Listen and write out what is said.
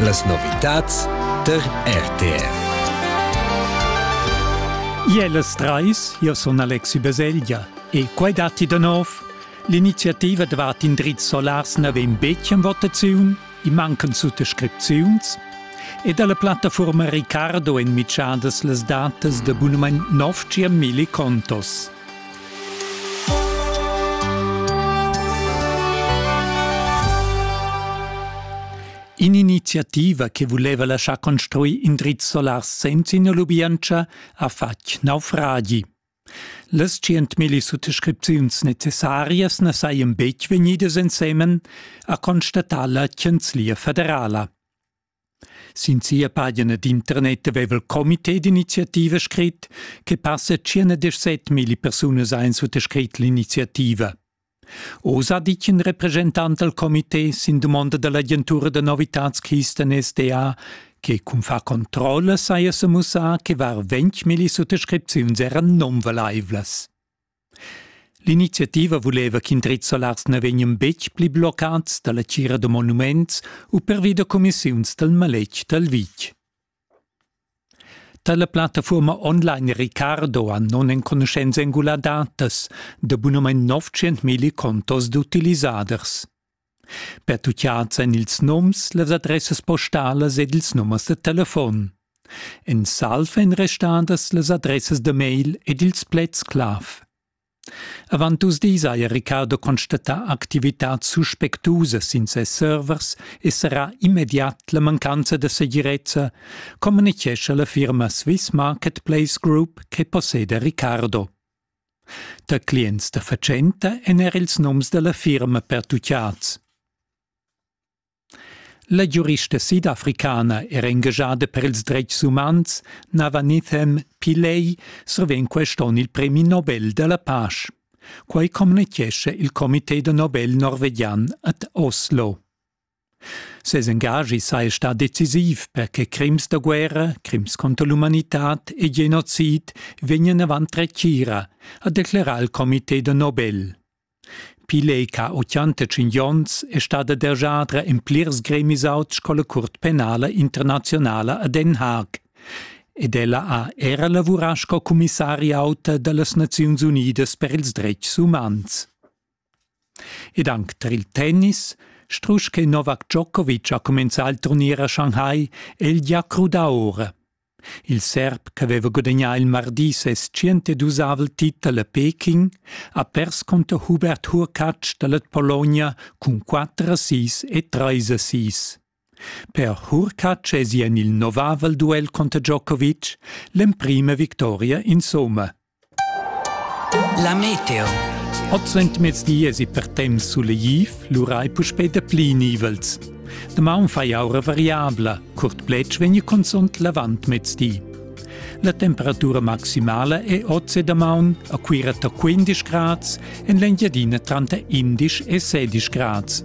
Las novitads der RTR. Ielas trais, io sun Alexi Baselgia e quai datti da nov. L'iniziativa dvat in drizz solars na vegn betg en votaziun, i mancan suttascripziuns e dalla plattaforma Ricardo en mitschadas las datas da abonament 9 milli contos. In'iniziativa che vuleva laschar construir in drizz solar senza ina lubientscha ha fatg naufragi. Las centmilli suttascripziuns necessarias na sajan betg vegnidas ensemen, ha constatà la Chanzlia federala. Sin sia pagina d'internet haveva il comité d'iniziativa scrit che passa 117 milli persunas ein suttascrit l'iniziativa. Oz ha ditg in representant dal comité sin dumonda dall'agentura da novitads-Kisten SDA che cun far controlla saja semussà che var ventg milli suttascripziuns eran nunvalaivlas. L'iniziativa vuleva ch'in drizzer Lars na vegnan betg pli bloccads da la tgira da monuments u pervi da cumissiuns dal maletg dal vitg. Tar la plattafuorma online Ricardo han nonenconuschents engulà datas da bunamain 900.000 contos d'utilisaders. Pertuccads èn ils nums, las adressas postalas ed ils numers da telefon. En salv èn restadas las adressas da mail ed ils pleds-clav. Avant dus dis haja Riccardo constatà activitads suspectusas sin ses servers e sarà immediat la mancanza da segirezza, communitgescha la firma Swiss Marketplace Group che posseda Riccardo. Da clients da fatschenta èn er ils noms da la firma pertutgads. La giurista sidafricana era engagada per ils dretgs umans Navanithem Pillay survegn quest onn il premi Nobel da la pasch. Quai communitgescha il comité da Nobel norvegian ad Oslo. Ses engaschi saja stà decisiv per che crims da guerra, crims contro l'umanitad e genocid vegnan avant retgira, ha declerà il comité da Nobel. Pilei ch'ha 85 onns è stada dergiadra en plirs gremis auts sco la Curt penala internazionala a Den Haag ed ella ha era lavurà sco cumissari auta da las Naziuns Unidas per ils dretgs umans. Ed anc tar il tennis, strusch che Novak Djokovic ha cumenzà il turnier a Shanghai, è el gia crudà ora. Il serb ch'aveva gudagnà il mardi ses 102 titel a Peking ha pers cunter Hubert Hurkacz da la Pologna cun 4 a 6 e 3 a 6. Per Hurkacz esi en il novavel duel cunter Djokovic l'emprima victoria insumma. La meteo. Oz entamez esi per temps sulegtiv, lura ei puspei dapli nivels. Damaun fai aura variabla, curt pletg vegni consont l'avant mezdi. La temperatura maximala è oz e damaun a Cuira ta 15 grads, en l'Engiadina tranter 11 e 16 grads.